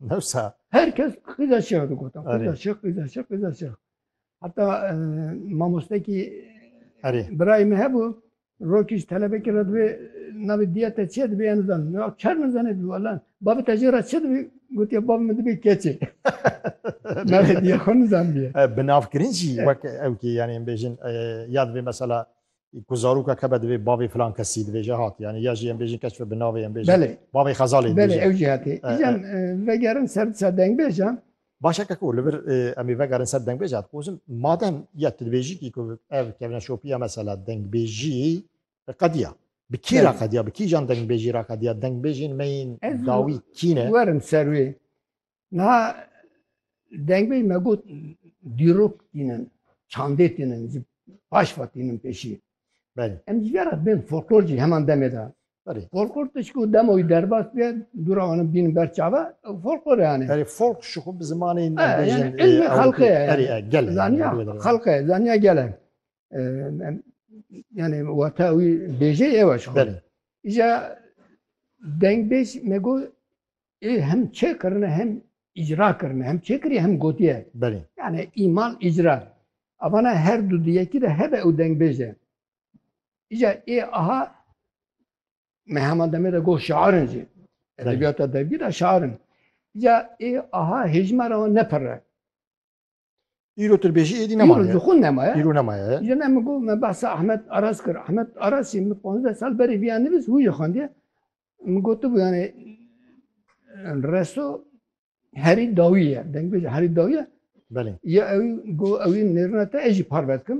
Newsa. Herkes qîza şêx digot. Qîza şêx, qîza şêx, qîza şêx. Heta e, mamostekî birayê min hebû rokîş telebekî re divê navê diya te çê dibê em zan. Ya çer min zanê dibî wala. Babê te jê re çi dibî? Gotiya bab min dibê keçê. Navê diya xwe nizandiye. Binavkirin jî wek ew kî yanê em bêjin e, ya divê mesela Ku zaroka kebe divê bavê filan kesî dibêje hat yanî ya jî em bêjin keç bi navê em bêjin bavê Xezalê dibêje. Belê ew jî hatê. Îcan vegerin ser disa dengbêjan. Baş e keko li vir em ê vegerin ser dengbêjan. Dixwazim madem ya tu dibêjî kî ku ev kevna şopiya mesela dengbêjî qediya. Bi kî ra qediya, bi kîjan dengbêjî ra qediya, dengbêjên me yên dawî kî ne? Werin ser wê. Na dengbê me got dîrok tînin, çandê tînin, ji baş ve tînin pêşî. Belê. Em ji vera bên folklor jî heman demê de. Belê. Folklor tişkû dema wî derbas bê, dûra wan bînin ber çawa, folklor yani. Belê, folk ji xwe bi zimanê Ee, yani ilmê xelqê ye. Belê, gelê. Zaniya xelqê, zaniya gelê. yani wata wî bêjê ew e ji xwe re. Îja dengbêj me got ê hem çêkirine hem îcra kirine hem çêkirî hem gotiye. Belê. Yani îmal îcra. Avana her du di yekî de hebe ew dengbêj e. Îja ê aha me hema demê de got şiarin jî. Edebiyata dergî de şiarin. Îja ê aha hêjmara wan nepirre. Îro tirbêjî êdî Îro nemaye. ji xwe nemaye. Îro nemaye. Îro ne min got me behsa Ahmet Aras kir. Ahmet Aras jî min pazdeh sal berê viya nivîs wî jî xwendiye. Min gotibû yanê reso herî dawî ye. Dengbêj herî dawî ye. Belê. Ya ew got ew ê nêrina te ez jî parve dikim.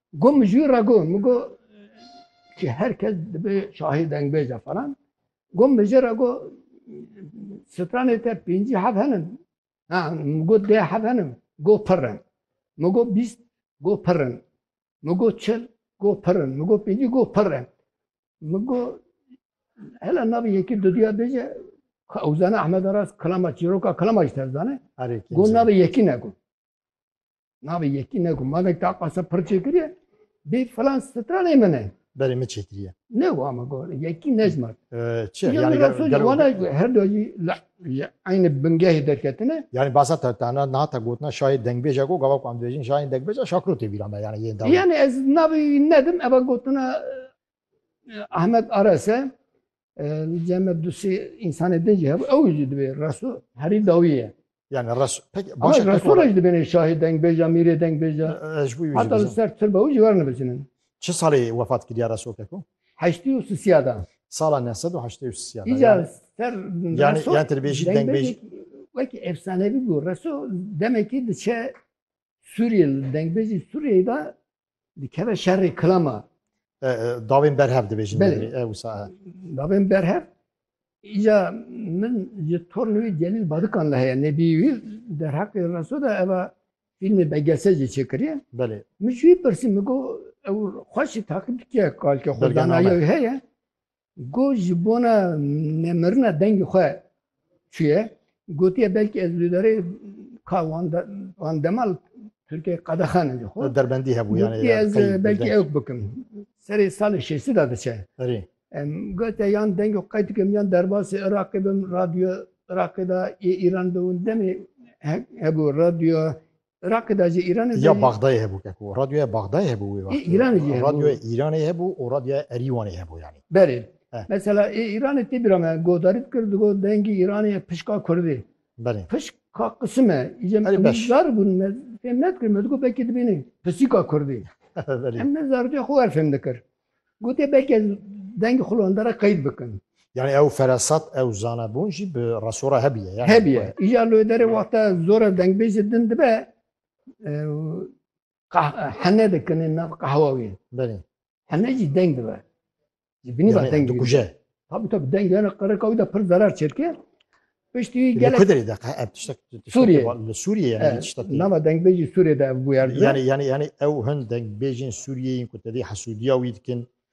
Got min ji wî re got min got ki her kes dibe şahî dengbêj e falan. Got min jê re got stranê te pêncî hev henin. Ha min got dê hev henin. Got pir in. Min got bîst got pir in. Min got çil got pir in. Min got pêncî got pir in. Min got hele navê yekî duduya bêje Ewzane Ahmed Aras kilama çîroka kilama jî tevzane. Erê Got kîmce. navê yekî ne got. Navê yekî ne ku malek ta qasa pir çêkiriye bê filan stranê min e. Berê min çêkiriye. Ne wa me got yekî nejmar. Çi yani wana her do jî aynı bingehê derketine. Yani basa te tana nata gotna şayê dengbêja ku gava ku em dibêjin şayên dengbêja şakiro tê vîra me yani yên dawa. Yani ez navê nedim eva gotina Ahmet Arese Cem Abdüsî insanê din jî hebû ew jî divê resu herî dawî ye. Yani resu pek başa pek resu rej dibêne şahê dengbêja mîrê dengbêja. Hata li ser tirba û jî werin bicinin. Çi salê wefat kiriya resu keko? Heştî û sisiya da. Sala nesed û heştê û sisiya da. Îca ser yani yan tirbêjî dengbêjî wekî efsanevî bû resu demekî diçe Sûriyê li dengbêjî Sûriyeyê da dikeve şerê kilama. Davên berhev dibêjin. Davên berhev Îca min ji tornê wî Celîl Badikan li heye nebî wî derheqê reso de eva fîlmê belgese jî çêkiriye. Belê. Min ji wî pirsî min got ew xweşî taqîb dikiye kalke xwe danaye heye. Ku ji bona nemirina dengê xwe çûye, gotiye belkî ez li derê ka wan de wan dema li Tirkiyeyê qedexanin ji xwe. Derbendî hebû yani. Gotiye ez belkî ewk bikim. Serê salê şêstî de diçe. Erê. Em gotiye yan dengê xwe qey dikim yan derbasî Iraqê bim, radyo Iraqê de yê Îran de hûn demê hebû radyo Iraqê de jî Îranê de Ya jî. Baxdayê hebû keko. Radyoya Baxdayê hebû wê Ê wextê. Îranê jî hebû. Radyoya Îranê hebû û radyoya Erîwanê hebû yanî. Berê. Eh. Mesela ê Îranê tê bîra me guhdarî dikir digot dengî Îranê ye pişka kurdê. Belê. Pişka qisim e. Îje Belê, em beş. zar bûn me fêm nedikirin me digot belkî dibînê pisîka kurdê. Belê. Em ne zarokê xwe wer fêm dikir. Gotê belkê dengê xwe li wenda re qeyd bikin. Yanî ew feresat, ew zanebûn jî bi reso re hebûye yanî. Hebûye. Îcar li wê derê wexta zor e dengbêjê din dibe hene dikin ên nav qehwa wê. Belê. Hene jî deng dibe. Ji binî ve deng dikuje. Tabî tabî deng yani qirika wî de pir zerar çêdike. Piştî wî gelek Kudrê de qe- ev tiştek tiştek Sûriyeyê. va- li Sûriyeyê yani Evet, tiştek. Nama dengbêjî Sûriyê de ev bûyer dibe. Yani yani yani ew hin dengbêjên Sûriyeyên ku tevî hesûdiya wî dikin